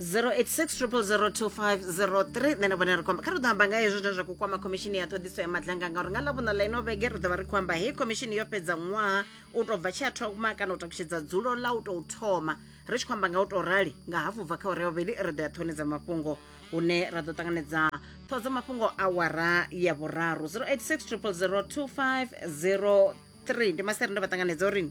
0860002503 nṋe na vhone ri kwamba kha ri ḓo amba nga hezwo zwine zwa khou kwama khomishini ya ṱhoḓiso ya madlanga ngauri nga ḽavhuṋa ḽa ino vhege ri ḓo vha ri khou amba hei khomishini yo fhedza ṅwaha u tou bva tshi a thoma kana u takutshedza dzulo ḽa u tou thoma ri tshi khou amba nga u tou rali nga hafu bva kha uri ya vhuvhili ri ḓo ya ṱhoni dza mafhungo hune ra ḓo ṱanganedza ṱhoho dza mafhungo awara ya vhuraru 0860002503 ndi masere ndo vha ṱanganedza uri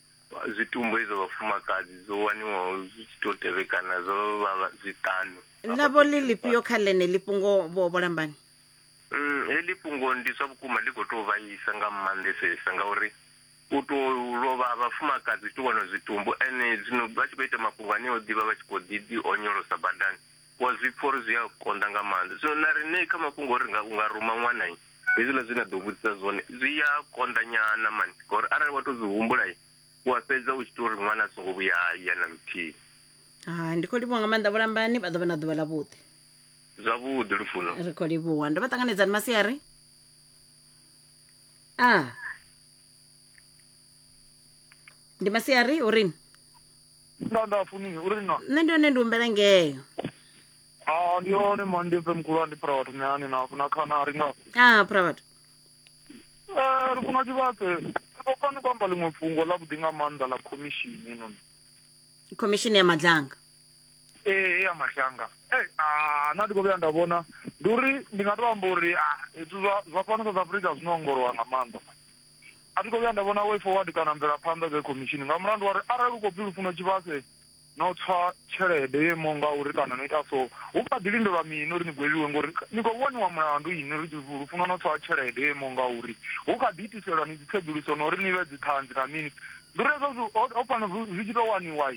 zwitumbu izwo vhafumakadzi zwo waniwaho zwi tshi tou tevhekana zwo vha vha- zwiṱanu navho ḽi ḽifhio kha ḽeneḽi fhungo vho vho lambani Mm, heḽi fhungo ndi zwa vhukuma ḽi khou tou vhaisa nga maanḓesesa ngauri u tou lovha ha vhafumakadzi u tou wana zwitumbu ene zwino vha tshi khou ita mafhungo ane o ḓivha vha tshi khou ḓi ḓi onyolosa badani wa zwi pfa uri zwi a konḓa nga maanḓa. Zwino na riṋe kha mafhungo ori nga, u nga ruma ṅwana, hezwiḽa zwe na ḓo vhudzisa zwone zwi a konḓa nyana mani, ngauri arali wa tou zwi humbula u a fhedza u tshi ita uri ṅwana a songo vhuya a ya na luthihi. Hai, ndi khou livhuwa nga maanḓa vhulambani, vha ḓo vha na ḓuvha ḽavhuḓi. Zwavhuḓi Lufuno. Ri khou livhuwa. Ndo vha ṱanganedzani masiari? A. Ndi masiari, u ri? Nda nda funi uri na. Nṋe ndi hone ndi humbela ngeo. Ah ndi hone mani ndi mpe mkhulu ndi phara vhathu nani na na khana ri nga. Ah phara vhathu. Eh ri funa tshivhatse. Ri fani ku amba ḽiṅwe fhungo ḽa vhuḓi nga maanḓa ḽa khomishini noni. Khomishini ya madlanga. Ee ya madlanga. Eh ah na ndi kho vhuya nda vhona ndi uri ndi nga to amba uri ah zwithu zwa zwa fhano South Africa zwino ongolowa nga maanḓa. A thi khou vhuya nda vhona way forward kana mvelaphanḓa dza khomishini nga mulandu wa ri arali u khou pfi lufuno tshivhase no tswa tshelede yo imaho nga uri kana no ita so hu kha ḓi lindelwa mini uri ni gwevhiwe ngori ni khou vhoniwa mulandu ini ri lufuno no tswa tshelede yo imaho nga uri hu kha ḓi itiselwa ni dzitsedzuluso na uri ni vhe dziṱhanzi na mini ndi uri hezwo ho fanela zwi tshi tou waniwa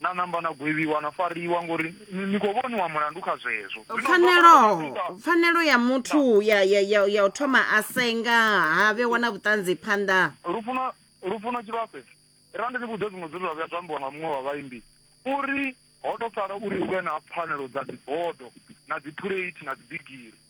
Na namba na gwevhiwa na fariwa ngori ni khou vhoniwa mulandu kha zwezwo. Pfanelo pfanelo ya muthu ya ya ya ya u thoma a senga ha vhe wana vhutanzi phanḓa. Lufuno lufuno tshivhase ra ndi ni vhudze zwiṅwe zwithu zwa vhuya zwa ambiwa nga muṅwe wa vhaimbi uri ho to sala uri hu vhe na pfanelo dza dzibodo na dzi phuleithi na dzi bigiri.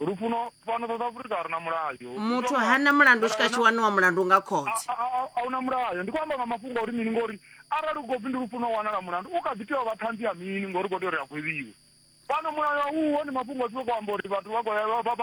lufuno fhano south africa a ri na mulayo muthu ha na mulandu u swika tshi waniwa mulandu nga khothe a hu na mulayo ndi khou amba nga mafhungo a uri mini ngori arali u khou pfi ndi lufuno u wanala mulandu u kha ḓi tea u vha ṱhanzi ya mini ngori u khou tea uri a khweviwe fhano mulayo uho ndi mafhungo a tshi khou amba uri vhathu vha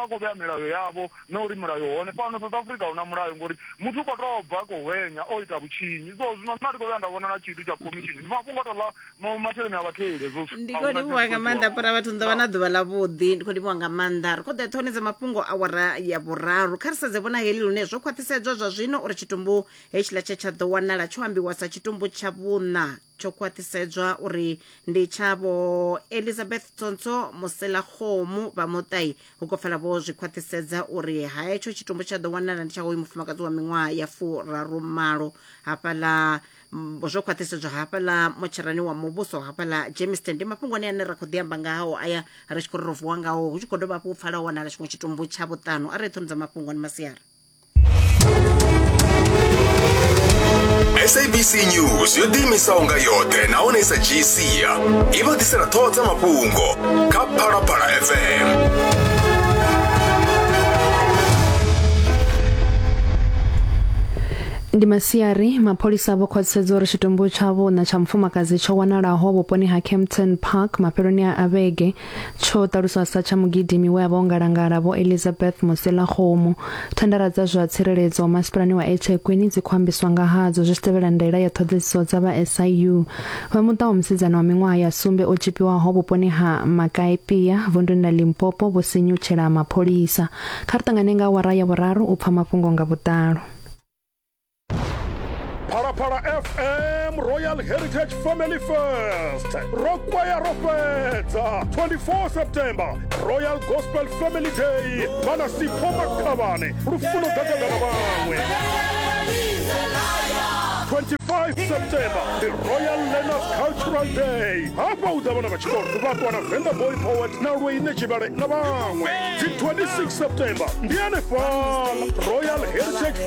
khou vhea milayo yavho na uri mulayo hone fhano south africa hu na mulayo ngori muthu u khou tou bva khou hwenya o ita vhutshinyi so zwino nna ndi khou vhuya nda vhona na tshithu tsha khomishini ndi mafhungo a tou ḽa Mo- masheleni a vhatheli hezwo zwithu. ndi A khou huna livhuwa nga tshithu maanḓa tsho- fhura vhathu ni ḓo vha na ḓuvha ḽa vhuḓi ndi khou livhuwa nga maanḓa ri khou ḓa ṱhoni dza mafhungo awara ya vhuraru kha ri sedze vhona heli lune zwo khwaṱhisedzwa zwa zwino uri tshitumbu hetshiḽa tshe tsha ḓo wanala tsho ambiwa sa tshitumbu tsha vhuṋa tsho khwaṱhisedzwa uri ndi tshavho elizabeth tsontsho muselakgomu vha muṱai hu khou pfala vho zwi khwaṱhisedza uri ha hetsho tshitumbu tsha ḓo wanala ndi tsha hoyu mufumakadzi wa miṅwaha ya furaru malo hafhaḽa Mm, zwo khwaṱhisedzwa hafhaḽa motsherani wa muvhuso hafhaḽa jamestown ndi mafhungo ane ane ra khou ḓi amba ngao aya ri tshi khou ri ro vuwa ngao hu tshi khou dovha hafhu u pfala u wanala tshiṅwe tshitumbu tsha vhuṱanu arali ṱhono dza mafhungo ni masiari sabc news yo ḓiimisaho nga yoṱhe nahone i sa dzhii sia i vha ḓisela ṱhoho dza mafhungo kha phalaphala fm Ndi masiari, mapholisa vho khwaṱhisedza uri tshitumbu tsha vhuna tsha mufumakadzi tsho wanalaho vhuponi ha Kempton Park mafheloni a vhege tsho ṱaluswa sa tsha mugidimi we a vha o ngalangala Vho Elizabeth Moselakgomo. Thandara dza zwa tsireledzo masipalani wa eThekwini dzi khou ambiswa nga hadzo zwi tshi tevhela ndaela ya ṱhoḓedziso dza vha SIU. Vha muṱa wa musidzana wa miṅwaha ya sumbe o tzhipiwaho vhuponi ha Makaepia vunduni ḽa Limpopo vho sinyutshela mapholisa. Kha ri ṱangane nga awara ya vhuraru u pfa mafhungo nga vhuḓalo. phalaphala fm royal heritage family fest ro kwaya ro fhedza 24 september royal gospel family day vhana sipho makhavhane lufuno ḓagada na vhaṅwe 25 september the royal learners cultural day hafha u ḓa vhana vha tshikolo vhaṱwa na venda boy poet na lweine tshivhale na vhaṅwe dzi 26 september ndi anefhala royal heritage